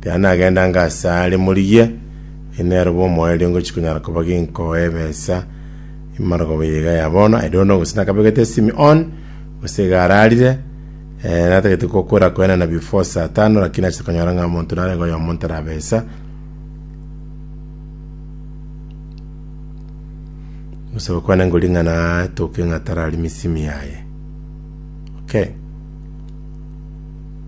Ekero nagendange asare, morigie, Inee, roba omoyo erio ngochia konyara koba ginkoe ebesa emargoba eye iga ya bono? I don't know, gose nakabegete esimi on, gose iga ararire. Eh, natagete gokora koenana before saa tano, lakini nachete konyora ng'a omonto narenge oyomo ntarabesa. Gose gokwana ngori ng'a natoke ng'a tararimi esimi yaye. Okay.